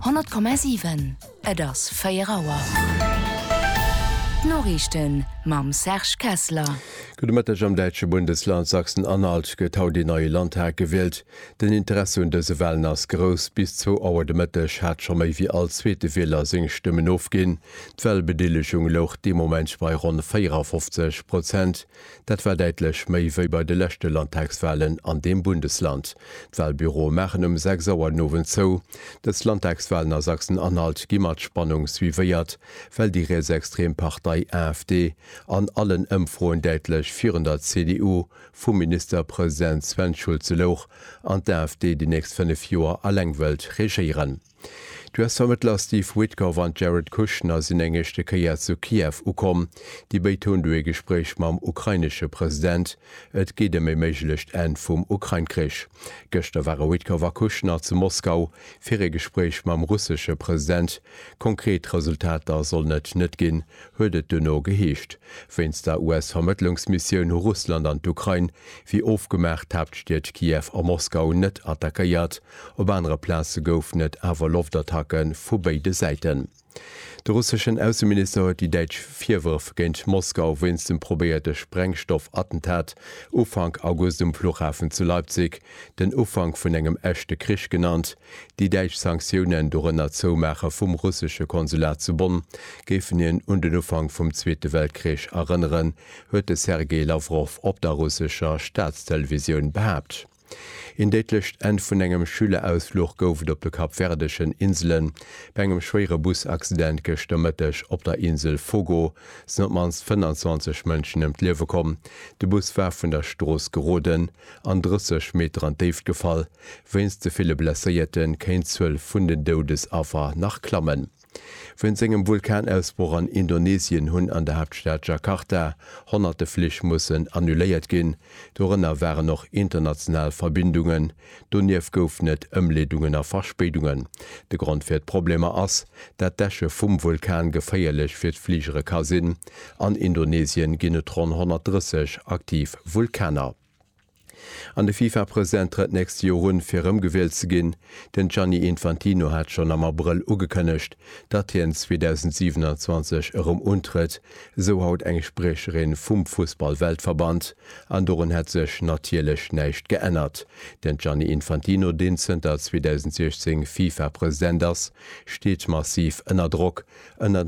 100,7, Et ass 4 Auer. D'Noriichten mam Serge Kessler. Gudde Mëtteg, Am däitsche Bundesland Sachsen-Anhalt gëtt haut een neie Landtag gewielt. Den Interesse un dëse Walen ass grouss. Bis zwou Auer de Mëtteg hat scho méi wéi all zweete Wieler seng Stëmmen ofginn. D'Walbedeelegung louch dee Moment bei ronn 54 Prozent. Dat war däitlech méi wéi bei de leschte Landtagswalen an deem Bundesland. D'Walbüroe maachen ëm 6 Auer den Owend zou. Dës Landtagswalen a Sachsen-Anhalt gi mat Spannung suivéiert, well déi rietsextrem Partei AfD an allen Ëmfroen däitlech virun der CDU vum Ministerpresident Sven Schulze louch an d'AfD déi nächst 5 Joer eleng wëllt regéieren. D'US-Vermëttler Steve Witkoff an d'Jared Kushner sinn eng éischte Kéier zu Kiew ukomm. Déi béid hunn do ee Gespréich mam ukrainesche President. Et geet ëm ee méiglecht Enn vum Ukrain-Krich. Gëschter ware Witkoff a Kushner zu Moskau fir ee Gespréich mam russesche President. Konkret Resultater sollen et net ginn, huet et duerno geheescht. Wéinst der US-Vermëttlungsmissioun hu Russland an d'Ukrain, wéi ofgemaach, d'Haaptstied Kiew a Moskau net attackéiert. Op anere Plaze goufen et awer Loftattacke vu béide Säiten. De russeschen Ausseminister huet déi däitsch Virwërf géint Moskau wéinst dem probéierte Sprengstoff-Attentat Ufank August um Fluchhafen zu Leipzig den Ufank vun engem echte Krich genannt. Déi däitsch Sanktiounen, dorënner d'Zoumaache vum russesche Konsulat zu Bonn, géifen hien un den Ufank vum Zweete Weltkrich erënneren, huet de Sergei Lawrow op der russescher Staatstelevisioun behaapt. Een déidlecht Enn vun engem Schülerausfluch gouf et op de kapverdeschen Inselen bei engem schwéiere Busaccident gëschter Mëtteg op der Insel Fogo sinn op d'mannst 25 Mënschen ëm d'Liewe komm. De Bus war vun der Strooss geroden an 30 Meter an d'Déift gefall. Wéinst de ville Blesséierte kéint d'Zuel vun den Doudesaffer nach klammen. Wéinst engem Vulkanausbroch an Indonesien hunn an der Haaptstad Jakarta honnerte Flich mussen annuléiert ginn, dorënner waren och international Verbindungen. Donieft goufen et Ëmleedungen a Verspéidungen. De Grond fir d'Problemer ass, dat d'Äsche vum Vulkan geféierlech fir d'Fligere ka sinn. An Indonesien ginn et ronn 130 aktiv Vulkaner. An de FIFA-President trëtt nächst Joer un, fir erëmgewielt ze ginn. Den Gianni Infantino hat schonn am Abrëll ugekënnegt, datt hien 2027 erëm untrëtt, esou haut eng Spriecherin vum Fussball-Weltverband. An dorun hätt sech natierlech näischt geännert. Den Gianni Infantino, deen zënter 2016 FIFA-President ass, steet massiv ënner Drock. Ënnert.